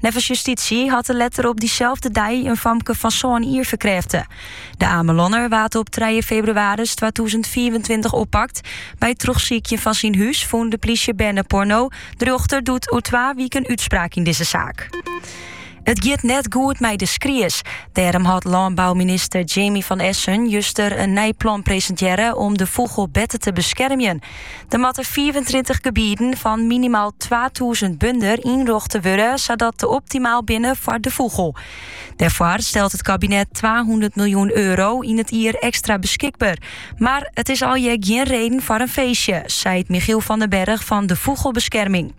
Neffens justysje hat er letter op dyselde dei in famke fan sân jier ferkrêfte. De Amelanner waard op 3 febrewaris 2024 oppakt. By it trochsykjen fan syn hûs fûn de plysje berneporno. De rjochter doet oer twa wiken útspraak yn dizze saak. It giet net goed mei de skries. Dêrom hat lânbouminister Jaimi van Essen juster in nij plan presintearre om de fûgel better te beskermjen. Der moatte 35 gebieden fan minimaal 2000 bunder ynrjochte wurde sadat dy optimaal binne foar de fûgel. Dêrfoar stelt it kabinet 200 miljoen euro yn it jier ekstra beschikber. Mar it is alhiel gjin reden foar in feestje, seit Michiel van den Berg fan de Fûgelbeskerming.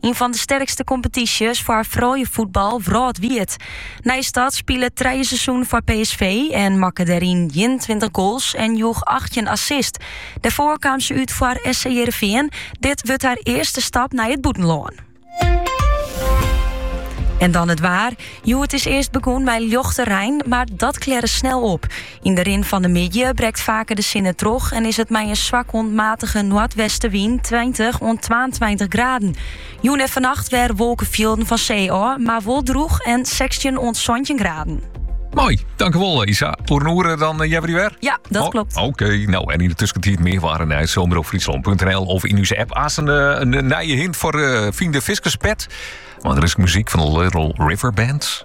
Ien fan de sterkste kompetysjes foar frouljusfuotbal wrâldwied. Nijstad spile trije seizoenen foar PSV en makke dêryn 21 goals en joech 18 assist. Dêrfoar kaam se út foar SC Hearrenfean. Dit wurdt har earste stap nei it bûtenlân. En dan it waar. Hjoed is earst begûn mei ljochte rein, mar dat klearre snel op. Yn de rin fan de middei brekt faker de sinne troch en is it mei in swak oant matige noardwestenwyn 20 oant 22 graden. Jûn en vannacht wer wolkenfjilden fan see ôf, mar wol drûch en 16 oant 17 graden. Moai, dankewol eh, Isa. Oer in oere eh, dan eh, jij weer weer? Ja, dat oh, klopt. Oké, no en yn de tuskentiid mear waar en nijs op omropfryslan.nl of yn ús app. Aanst in nije hint foar uh, Fyn de Fiskerspet. Mar earst muzyk fan de Little River Band.